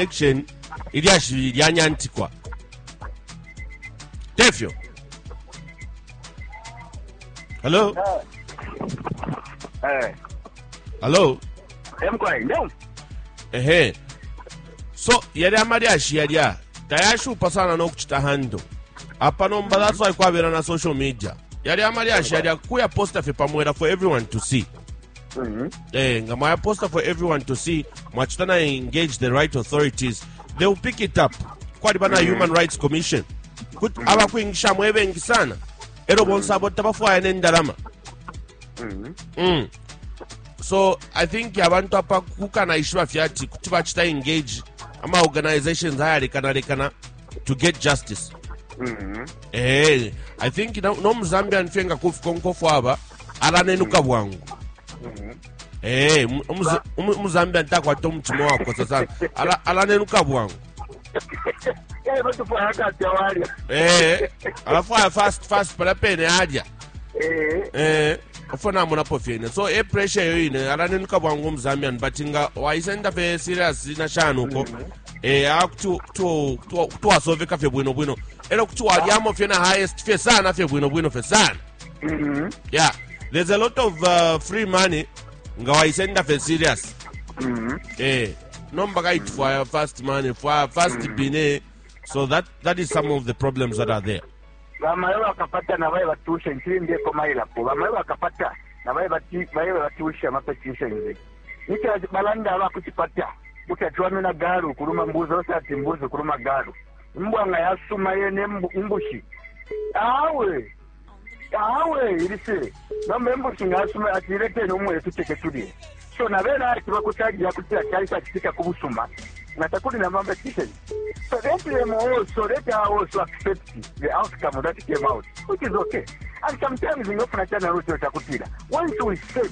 section ilyashi lyanyantikwa tefyo hello Eh, hello emkwai no ehe so yali amalyashi yalya tayashupa sana n'okucita hando apa nomba that's why kwabera na social media yali amalyashi yalya kuya posta fye pamwera for everyone to see mm -hmm. eh, nga mwaya poster for everyone to see mwachita na engage the right authorities they will pick it up kwaliba na mm -hmm. human rights commission kuti mm -hmm. abakwingisha mwebengi sana ero bonse abo tabafwaya nendalama mm-hmm. mm. so i think abantu apa kukanaishiba fyati kuti bachita engage ama organizations ayarekanalekana to get justice mm-hmm. eh, i think nomuzambian fye nga kufika onkofu aba alanenuka mm-hmm. bwangu mm-hmm. eh, umuzambian takwata omutima wakosa sana alanenuka bwangu eh, alafwaya fast fast pala pene alya ofuna amonapo fyene so e pressure eyo ine alanenuka bwangu omuzambian but nga waisenda fe serious na shani uko mm -hmm. eya eh, kuti wasoveka fye bwino bwino elo kuti walyamo fye na highest fye sana fye bwino bwino fye sana mm-hmm. yeah there's a lot of uh, free money nga wayisenda fye serious mm-hmm. eh nomba kayiti fwaya fast money fwaya fast mm-hmm. bine so that, that is some of the problems that are there bamayo bakapata nabaye batusha nkiri ndeko mayilapo bamayo bakapata nabaye batusha amapetition ze Ni ca balanda aba ku cipata mu ca ciwamina galu ukuluma mbuzi, onse ati mbuzi ukuluma galu. Imbwa nga yasuma yene imbu, imbushi awe awe ili fye nomba imbushi nga yasuma ati ileteni umwele tuceke tulye. So na bene ati bakucaja kuti acaisa citika ku busuma nga takuli na competition. So let them also, let her also accept the outcome that came out, which is okay. And sometimes in often channel also chakutila. Once we said,